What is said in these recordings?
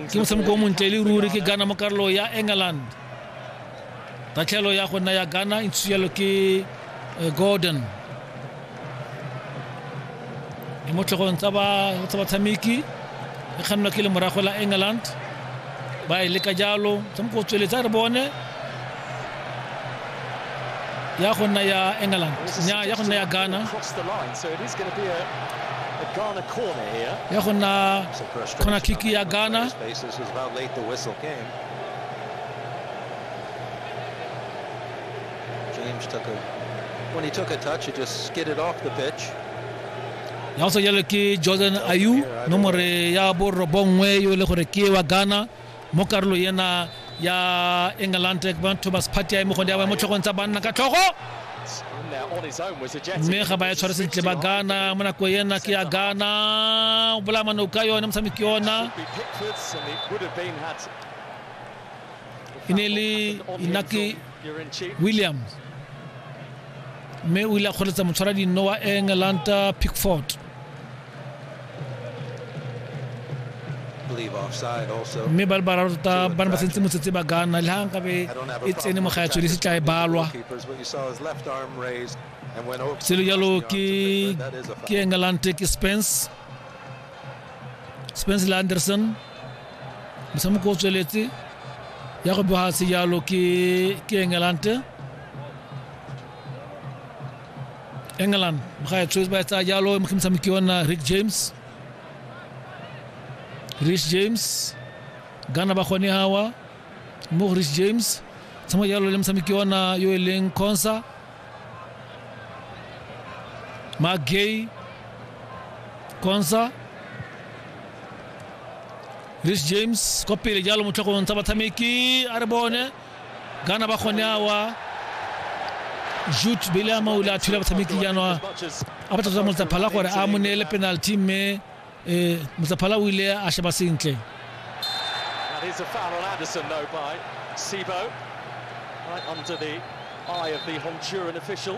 ke motshameko o montle e le ruri ke ghana mo karolo ya england tatlhelo ya go nna ya ghana e ntshuyalo ke eh, gordon e mo tlhogong tsa batshameki e kgannwa ke le morago la england ba e leka jalo motshameko o tsweletse a re bone ya go nna ya england nya ya go nna ya ghana ya go nna khona kick ya ghana James took a, when he took a touch, he just skidded off the pitch. ya go sa jalo ke jordan ayu nomore ya borobongwe yo e le gore ke wa ghana mo karolo ena ya england thomas party ya mogonde ya mo tlhogong tsa banna ka tlhogo mme ga ba ya tshware sentle ba gana mo nako ena ke ya gana o bolaya mano ka yone motshameki yona e ne e le inaki williams mme o ile a kgoletsa motshwara dinno wa england pickford mme ba le bararo tota ba ne ba sentse motsetse ba gana le ga nkabe e tsene mo gaetswe le se tla e balwa selo jalo ke ke engalante ke spence spence le anderson motshameko o tsweletse ya go boga sejalo ke ke engalante England ba ya choose ba tsa jalo e mogimisa moki wa nna Rick James Rich James Ghana ba gone hawa mo Rich James tsamo jalo le mosamiki wa nna yo e leng Consa Magay Consa Rich James kwa pele jalo motlhogong tsa batshameki a re bone Ghana ba gone awa Jude Belama o ile a thula batshameki jaanwa a batla tota Motsaphala gore a mo neele penalty mme eh, Motsaphala o ile a sheba sentle That is a foul on Anderson though by Sibo. Right under the eye of the Honduran official.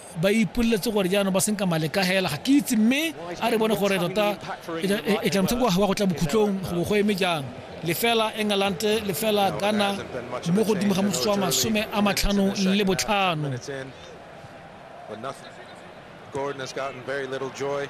ba ipoleletse gore jaanong ba senka male ka hela ga ke itse mme a re bone gore tota e tla motshameko wa go tla bokhutlong go go eme jang lefela england lefela ghana mo godimo ga motsotso wa masome a matlhano le botlhano Gordon has gotten very little joy.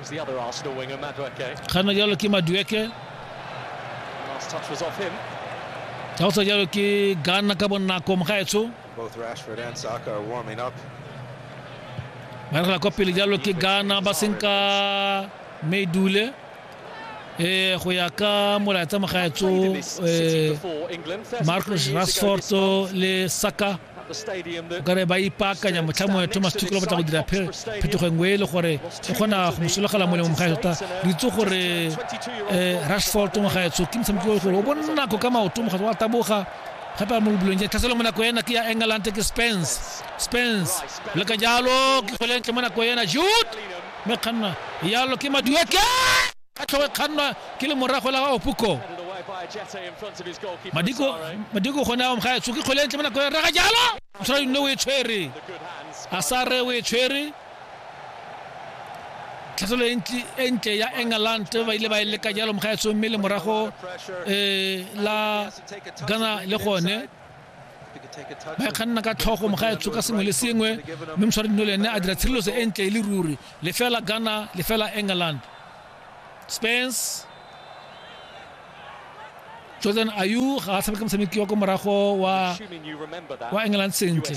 It's the other Arsenal winger, Madueke. kganna jalo ke madueke Last touch was off him. ja go tswa jalo ke gana ka bonako mogaetsho Both Rashford and Saka are warming up. ba re kwa pele jalo ke gana ba senka medule eh go ya ka molaetsa mogaetso Played in this city eh before England. 30 Marcus years ago Rashford this month. le Saka okare ba ipaakanya motlha mongwe thomas tukelo batla go dira phetogo e nngwe e le gore e kgona go mosologela molemo mogae tota re itse gore um rashford mogaetsho ke motshameki o gore o bonako ka maoto mogatso wa taboga gape a mo bolong ja tlhaselo mo nako ena ke ya england ke spence spence le ka jalo ke golentle mo nako ena jut mme kganna yalo ke madueke ka tlhogo e kgannwa ke le morago la opuko madiko madiko gone a omga etso ke kgole ntle mo nako ya rega jalo o tshwara yone o e tshwere a sa re o e tshwere tlhatlhelo e ntle ya england ba ile ba e leka jalo mogaetsong mme le morago um la gana le gone ba e kganna ka tlhogo moga etsho ka sengwe le sengwe mme moswari dino le ene a dira tshireletso e ntle e le ruri lefela ghana lefela england spence jordan ayu ga a tshameka motshameki wa ko morago wa wa england sentle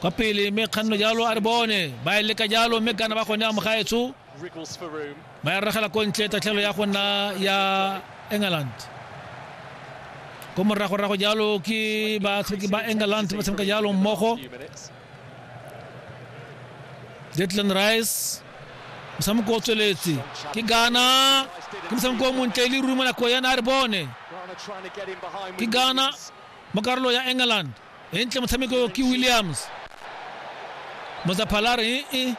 kwa pele mme kganno jalo a re bone ba e leka jalo mme kana ba gone a mogaetsho ba ya rragela ko ntle tatlhelo ya go nna ya england ko moragorago jalo ke batlhoki ba england ba tshameka jalo mmogo jetland rice motshameko o tsweletse ke gana ke motshameko o montle le ruma nako yana a re bone ke gana mo karolo ya england e ntle motshameko ke williams motsaphala re e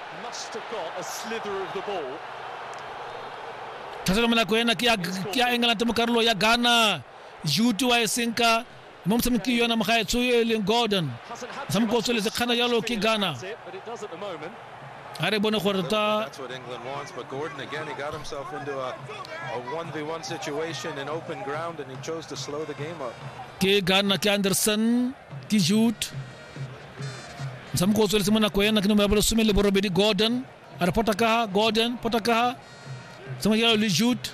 tlhatlhelo monako ena ke ya england mo karolo ya ghana juti wa e senka mo motshameki yona mogaetsho e leng gordon motshameko o tsweletse kgana jalo ke ghana a re bone gore ta ke garna ke anderson ke jude motshameko o tsweletse mo nako ena ke nomero ya bolesome le borobedi gordon a re pota kaha gordon pota kaha tshameko jalo le jude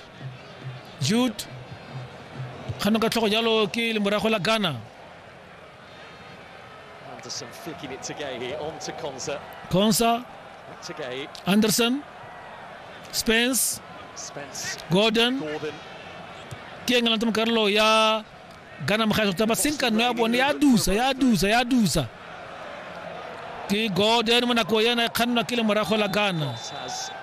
jude kgano ka tlhogo jalo ke lemorago la ghana Anderson flicking it to Gay on to Konsa. Konsa. Back to Gay. Anderson. Spence. Spence. Gordon. Gordon. Ke ngala ntse mokarolo ya Ghana mokgatlho taba seng ka nna ya bone ya dusa ya dusa ya dusa. Ke Gordon mo nako yena e kgannwa ke le morago la Ghana.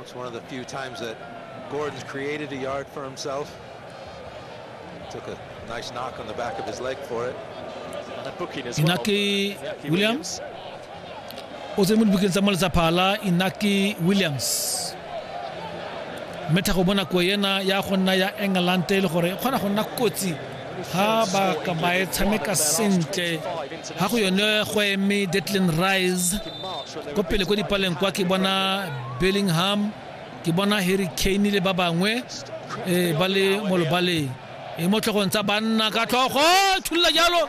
It's one of the few times that Gordon's created a yard for himself. Took a nice knock on the back of his leg for it. And a booking as well. Inaki Inaki Williams. o tse mo dibukeng tsa moletsa phala inaki williams mme tlhago bonako ena ya go nna ya england e le gore e kgona go nna kotsi ha ba ka ba e tshameka sentle ha go yone go eme detlin rise ko pele ko dipaleng kwa ke bona bellingham ke bona harry kane le ba bangwe um ba le mo lobaleng e mo tlhogong tsa banna ka tlhogo thulula jalo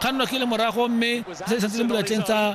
kgannwa ke le morago mme se santse le molatleng tsa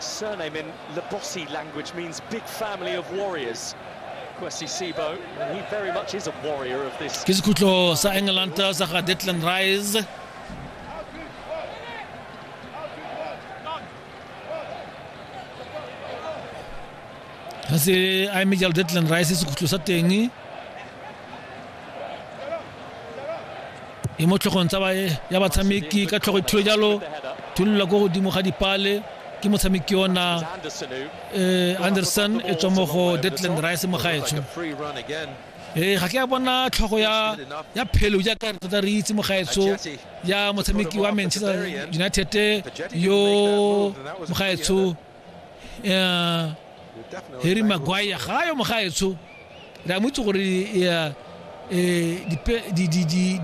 Surname in Labosi language means big family of warriors. Ke sekhutlo sa England sa ga Declan Rice. ga se a eme jalo deadland rice sekhutlo sa teng e mo tlhogong tsa ya batshameki ka tlhogo ithule jalo thulula ko godimo ga dipale ke motshameki ona eh, anderson e tswa mo go deadland rice mo gaetsho ee ga ke a bona tlhogo ya ya phelo jaaka re tota re itse mogaetsho ya motshameki wa manchester united yo mogaetsho um harry maguire ga yo mogaetsho re a motse gore um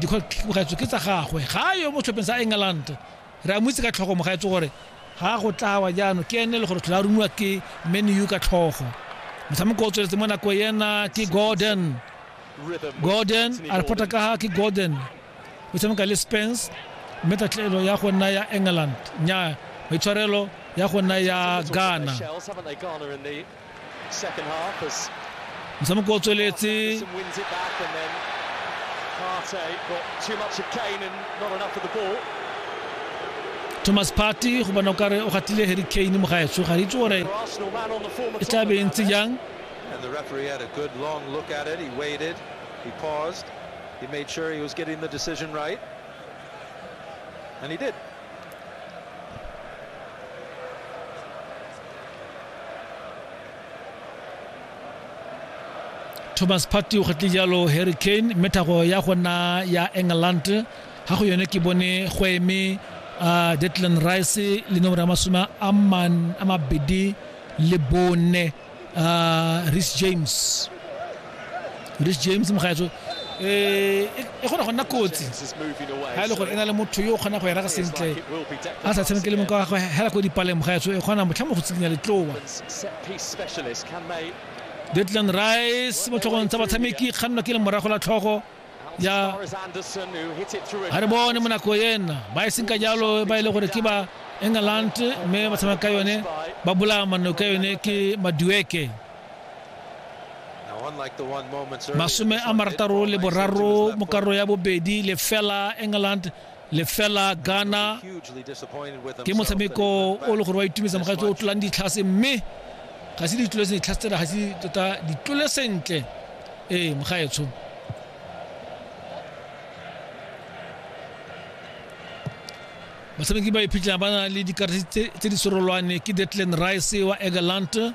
dikgwetso ke tsa gagwe ga yo mo tlhopheng sa england re a motse ka tlhogo mogaetso gore ga go tlawa jaanong ke ene le gore tlhola rumiwa ke menu ka tlhogo motshameko o tsweletse mo nako ena ke gordon gordon a repota ka ga ke gordon o tshameka le spence mme tatlelo ya go nna ya england nya maitshwarelo ya go nna ya ghana motshameko o tsweletse thomas party go bona o kare o gatile harry kane mo gaetsho ga re itse gore e tla be e ntse jang And the referee had a good long look at it. He waited. He paused. he made sure he was getting the decision right, and he did. thomas party o kgetle jalo harry kane mme thago ya gona ya england ga go yone ke bone go eme uh, declan rice le nomoro ya masome a mabedi le bone uh, Rich James Rich James mogaetso eh e gona go nna kotsi ha ile gore ena le motho yo gona go era ga sentle a sa tshameke le moka wa go hela go dipaleng mogaetso e gona motlha mo go tsikinya letlowa Declan Rice mo tlhogong tsa batshameki kganna ke le morago la tlhogo ja a re bone mo nako ena ba e seng ka jalo ba e le gore ke ba england mme ba tshameka ka yone ba bolaya manno ka yone ke madueke masome a marataro le boraro mo karolo ya bobedi lefela england lefela ghana ke motshameko o le gore wa itumedisa mogatse o tlolang ditlhase mme ga se ditlole sentle ditlhase tsena ga se tota ditlole sentle ee mogaetsho batshameki ba iphitlhela ba na le dikarate tse di serolwane ke detland rice wa egerland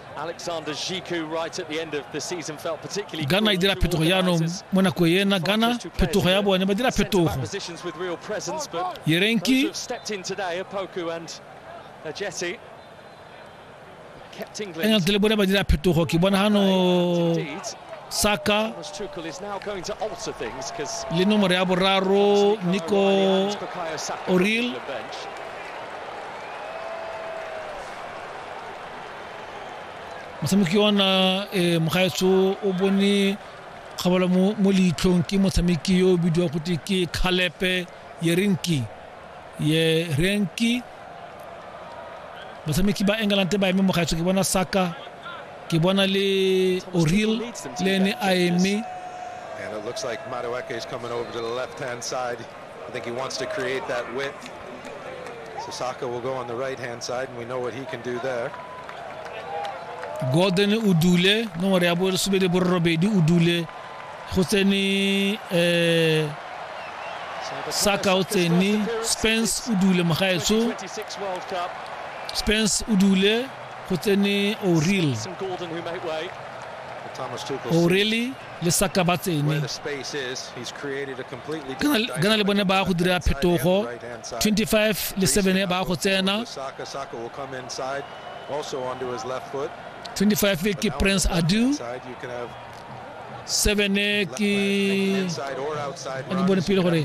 ghana idira phetogo jaanong mo nako ena ghana phetogo ya bone ba dira phetogo yerenki england le bone ba dira phetogo ke bona gano saka le nomoro ya boraro nico oril motshameki ona um mogaetso o bone kgabala mo leitlhong ke motshameki yo o bidiwa gote ke calepe yerinki yerenki batshameki ba england ba eme mogaetso ke bona saka ke bona le oril le ene a eme And it looks like Madueke is coming over to the left-hand side. i think he wants to create that with the soccer will go on the right hand side and we know what he can do there gordon o dule nomoro ya bolesome le borobedi o dule go tsene um saka o tsene spence o dule mogaetso spence o dule go tsene oril oreli le saka ba tsene gana le bone ba go dira phetogo 25 le 7 ba go tsena 25 ke prince adu 7 ke ne bone pele gore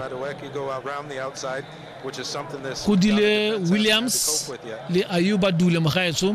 go dile williams le ayuba dule mogaetso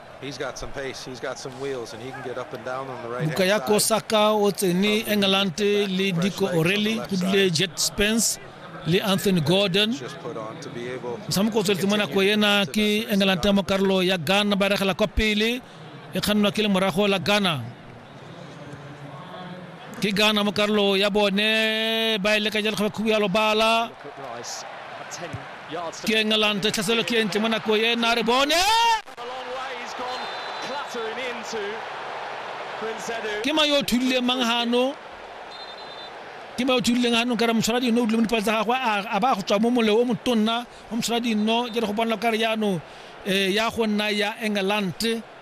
Bukayo Saka o tsene England le Nico O'Reilly go dule Jet Spence le Anthony Gordon motshameko o tsweletse mo nako ena ke England mo karolo ya Ghana ba regela kwa pele e kgannwa ke le morago la Ghana ke gana mo karolo ya bone ba e leka jalo kgaba khubu ya lobala ke engelante tlhaselo ke entle mo nako e na re bone ke ma yo thulile mang hano ke ma yo thulile hano ka re motshwara dino o dile mo dipatsa gagwe a ba go tswa mo moleo o motonna o motshwara dino jalo go bona ka re yano eh, ya go nna ya engelante